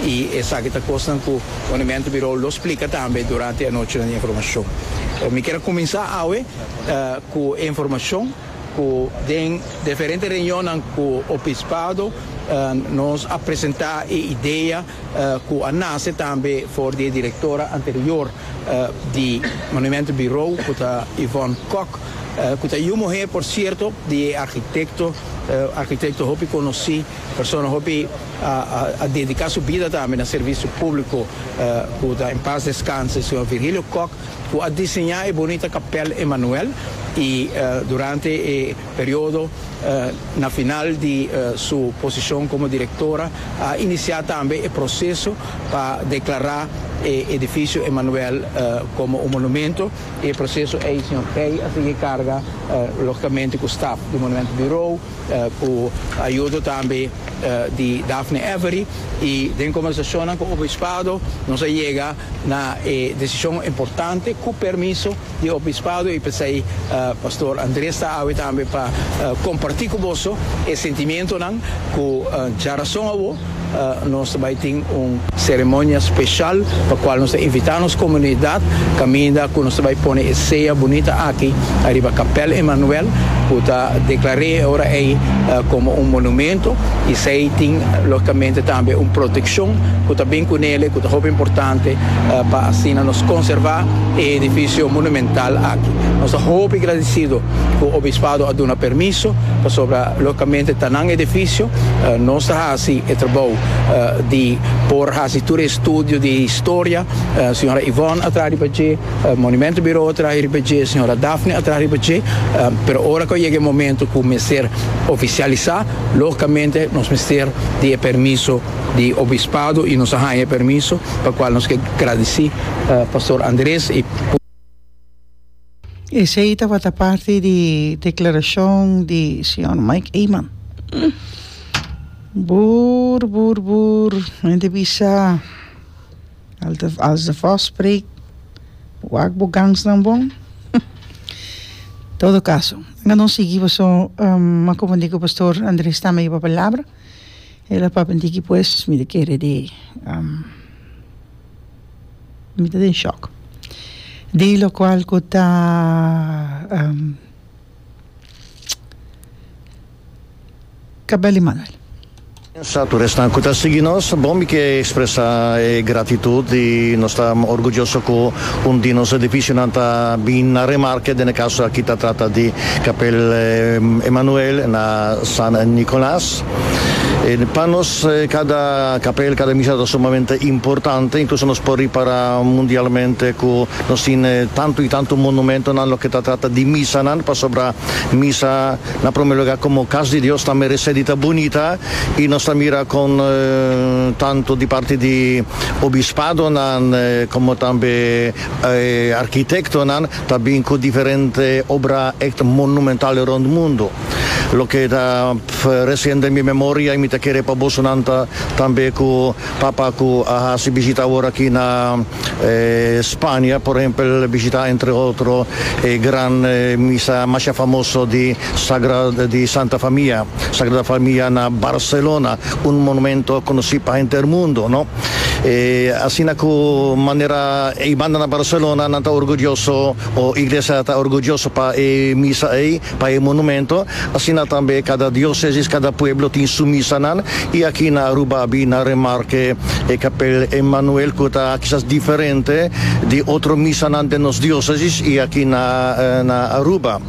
I esaki ta kosnan ku Monumento Birou lo splika tambe durante e anochinan di informashon. Mi kier a kuminsá awe ku e informashon ku den diferente reunionnan ku Obispado nos a presentá e idea ku a nase tambe for di e direktora anterior di Monumento Birou ku ta Yvonne Kok, ku ta yu muher por sierto di e arkitekto, arkitekto hopi konosí, persona hopi. A dedica su bida tambe na servicio publico cu ta en paz descanse señor Virgilio Kok cu a diseña e bonita Capel Emanuel y durante e periodo na final di su posicion como directora a inicia tambe e proceso pa declara e edificio Emanuel como un monumento y e proceso ey señor Pey a sigui carga logicamente cu staf di Monumento Bureau. Ku ayudo tambe di Daphne Avery i den kombersashonnan ku obispado nos a yega na e desishon importante ku permiso di obispado i p'esei Pastor Andres ta awe tambe pa kompartí ku boso e sentimentonan ku dja rason awor Nos ta bai tin un seremonia special pa cual nos ta invita nos comunidad caminda cu nos ta bai pone e sea bunita aki ariba Capel Emmanuel cu ta declare ora ey como un monumento y esey tin logicamente tambe un proteccion cu ta bin cu nele cu ta hopi importante pa asina nos conserva e edificio monumental aki. Nos ta hopi gradecido cu Obispado a duna permiso pasobra. Logicamente ta nan edificio, nos ta haci e trabou di por haci tur e estudio di historia, señora Yvonne a traha riba dje, Monumento Bureau a traha riba dje, señora Daphne a traha riba dje, pero ora cu a yega e momento cu mester oficialisa, logicamente nos mester di e permiso di Obispado y nos a haña e permiso, pa cual nos ke gradici Pastor Andres y. Esei tabata parti di deklarashon di señor Mike Eman. Boer, boer, boer, hende bisa als de vos spreekt, wak bo gangsnan bon. Todo kaso, laga nos sigui paso a komondi ku pastor Andres tambe yoba palabra, el a papia diki pues mi ta kere di. Mi ta den shock. Di locual cu ta Cabel y Manuel. Sa tur esnan cu ta sigui nos, bon mi ke expresa e gratitud y nos ta orguyoso cu un di nos edificionan ta bin na remarke, den e caso aki ta trata di Cabel y Manuel na San Nicolas. Pa nos kada kapel, kada misa ta sumamente importante, inkluso nos por ripará mundialmente ku nos tin tantu i tantu monumentonan loke ta trata di misanan, pasobra misa na promé lugá komo kas di Dios ta meresé di ta bunita i nos ta mira kon tantu di parti di obispadonan komo tambe arkitektonan ta bin ku diferente obra èkt monumental rònt mundu. Loke ta resiente en mi memoria y mi ta kere pa bosonan ta tambe cu papa cu a haci bishita awor aki na Spania, por ehempel bishita entre otro e gran misa masha famoso di di Santa Famia, Sagrada Famia na Barcelona, un monumento conoci pa henter mundo, no? E asina cu manera ey banda na Barcelona nan ta orgulloso o Iglesia ta orgulloso pa e misa ey. Pa e monumento, asina tambe kada diosesis, kada pueblo tin su misanan y aki na Aruba abi nan remarke e Kapel Emmanuel cu ta kisas diferente di otro misanan den nos diosesis y aki na na Aruba.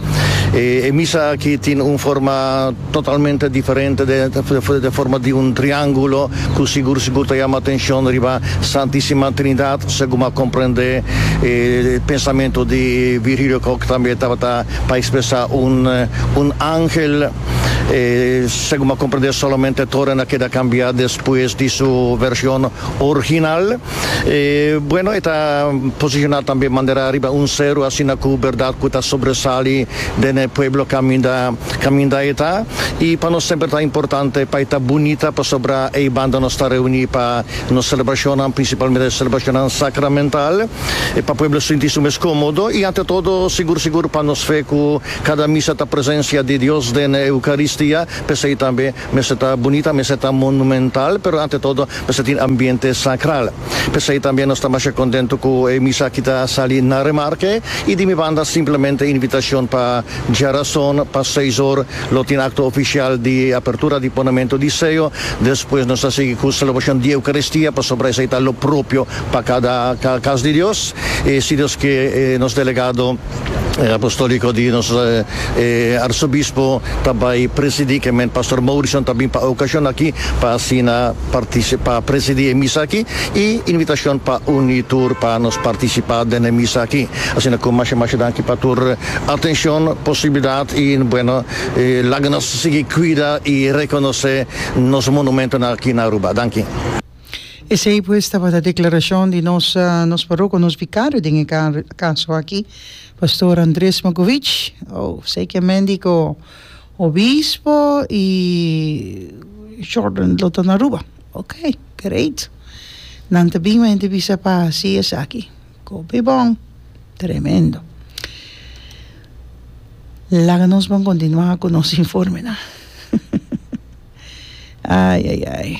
E misa aki tin un forma totalmente diferente de de forma di un triangulo cu sigur sigur ta yama atencion riba Santisima Trinidad segun bo a comprende e pensamento di Virgilio Kok tambe tabata Pa expresa un un angel e segun m'a comprende solamente toren a keda cambia despues di su version orginal e bueno e ta posiciona tambe mandera riba un cero asina cu berdad cu ta sobresali den e pueblo caminda caminda e ta y pa nos semper ta importante pa e ta bunita pasobra ey banda nos ta reuni pa nos celebracionnan principalmente celebracionnan sacramental. e pa pueblo sinti su mes komodo i ante todo sigur sigur pa nos fe ku kada misa ta presensia di Dios den e Eukaristia, p'esei tambe mester ta bunita, mester ta monumental, pero ante todo mester tin ambiente sakral. P'esei tambe nos ta masha kontentu ku e misa aki ta sali na Remarque i di mi banda simplemente invitashon pa djarason pa seis or lo tin akto ofisial di apertura di ponamentu di seo, despues nos ta sigui ku selebrashon di Eukaristia pasobra esei ta lo propio Pa cada cas di Dios, e si nos ke e nos delegado apostolico di nos Arzobispo ta bai presidi kemen Pastor Morrison ta bin pa e ocasion aki pa asina partici pa presidi e misa aki y invitacion pa uni tur pa nos participa den e misa aki. Asina cu masha masha danki pa tur atencion, posibilidad y bueno laga nos sigui cuida y reconoce nos monumentonan aki na Aruba. Danki. Esei pues tabata declaracion di nos nos parroco, nos vicario den e caso aki, Pastor Andres Makovic. Oh, sei ke mendi ko Obispo i Jordan lo ta na Aruba. Ok, great. Nan ta bin, ma hende bisa pa hasi esaki. Ko be bon. Tremendo. Laga nos bon continua ku nos informenan. Ai, ai, ai.